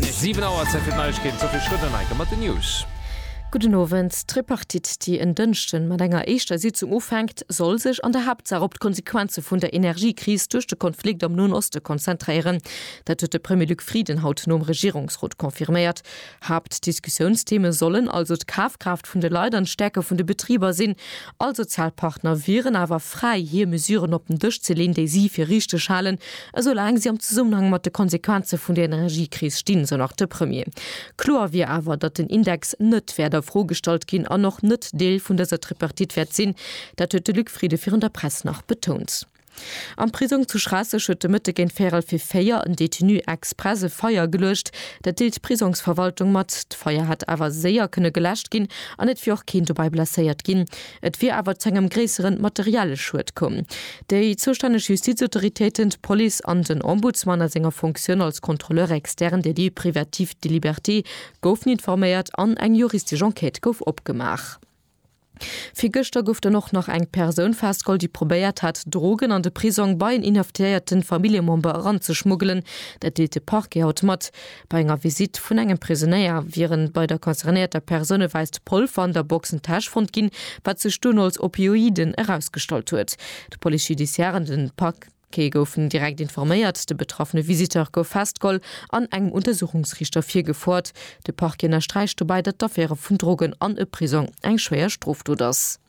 Siwen Auer, Zäit fir d'Neiegkeeten, d'Sophie Schröder-Neicker mat den News. Gudden Owend. D'Tripartite, déi en Dënschden mat enger éischter Sitzung ufänkt, soll sech an der Haaptsaach op d'Konsequenze vun der Energiekris duerch de Konflikt am Noen Oste konzentréieren. Dat huet de Premier Luc Frieden haut nom Regierungsrot confirméiert. Haaptdiskussiounstheme sollen also d'Kafkraaft vun de Leit an d'Stäerke vun de Betriber sinn. All Sozialpartner wieren awer fräi, hir Mesuren op den Dësch ze leen, déi si fir richteg halen, esoulaang si am Zesummenhang mat de Konsequenze vun der Energiekris stinn, sou nach de Premier. Kloer wier awer, datt den Index net wäert a Fro gestallt ginn an och net Deel vun dëser Tripartite wäert sinn. Dat huet de Luc Frieden virun der Press nach betount. Am Prisong zu Schraasseg huet de Mëtte géint véierel vir véier en Detenu express e Feier geluecht. Dat deelt d'Prisongsverwaltung mat. D'Feier hätt awer séier kënne geläscht ginn an et wier och keen dobäi blesséiert ginn. Et wier awer zu engem gréissere materielle Schued komm. Déi zoustänneg Justizautoritéiten, d'Police an den Ombudsman a senger Fonctioun als Contrôleur externe des lieux privatifs de liberté goufen informéiert an eng juristesch Enquête gouf opgemaach. Virgëschter gouf dann och nach eng Persoun festgeholl, déi probéiert hat, Drogen an de Prisong bei en inhaftéierten Familljemember eranzeschmuggelen. Dat deelt de Parquet haut mat. Bei enger Visitt vun engem Prisonéier wieren bei der concernéierter Persoun e wäisst Polver an der Boxentäsch fonnt ginn, wat sech dunn als Opioiden erausgestallt huet. D'Police judiciare an de Parquet. Kee goufen direkt informéiert, de betraffene Visiteur gouf festgeholl an engem Untersuchungsriichter virgefoert. De Parquet ënnersträicht dobäi, datt d'Affäre vun Drogen an e Prisong eng schwéier Strofdot ass.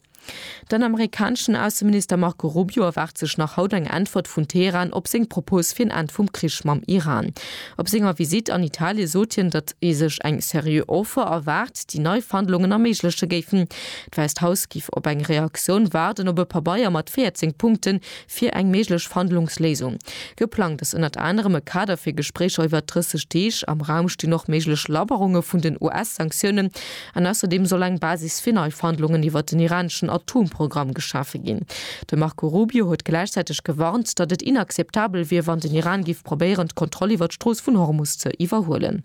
Den amerikaneschen Ausseminister Marco Rubio erwaart sech nach haut eng Äntwert vun Teheran op seng Propos fir en Enn vum Krich mam Iran. Op senger Visitt an Italie sot hien, datt ee sech eng seriö Offer erwaart, déi nei Verhandlungen erméigleche géifen. D'Wäisst Haus géif op eng Reaktioun waarden, op e Pabeier mat 14 Punkten, fir eng méiglech Verhandlungsléisung. Geplangt ass ënnert anerem e Kader fir Gespréicher iwwert 30 Deeg. Am Raum stinn och méiglech Labberunge vun den US-Sanktiounen an ausserdeem soll eng Basis fir nei Verhandlungen iwwert den iraneschen Atomprogramm geschafe ginn. De Marco Rubio huet gläichzäiteg gewarnt, datt et inakzeptabel wier, wann den Iran géif probéieren, d'Kontroll iwwert d'Strooss vun Hormus ze iwwerhuelen.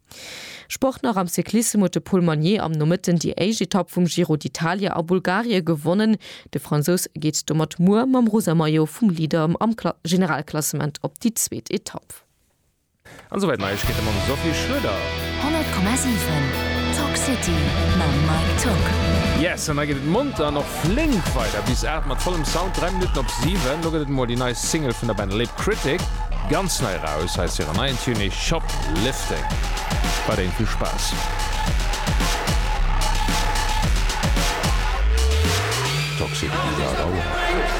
Sport nach am Cyclissem huet de Paul Magnier am Nomëtten déi éischt Etapp vum Giro d'Italia a Bulgarie gewonnen. De Fransous geet domat muer mam rosa Maillot vum Leader am Generalklassement op déi zweet Etapp. An esou wäit Neiegkeete mam Sophie Schröder. 100,7 Talk City mam Mike Tocq. Yes an da geet et monter an och. Flink weider bis 8 mat vollem Sound, 3 Minutten op 7. Lo gëtt et emol déi nei Single vun der Band Lip Critic, ganz nei eraus. Hei ass hiren neien Tune Shoplifting. Weiderhin vill Spaass! Toxic, Bizarre, Rauer.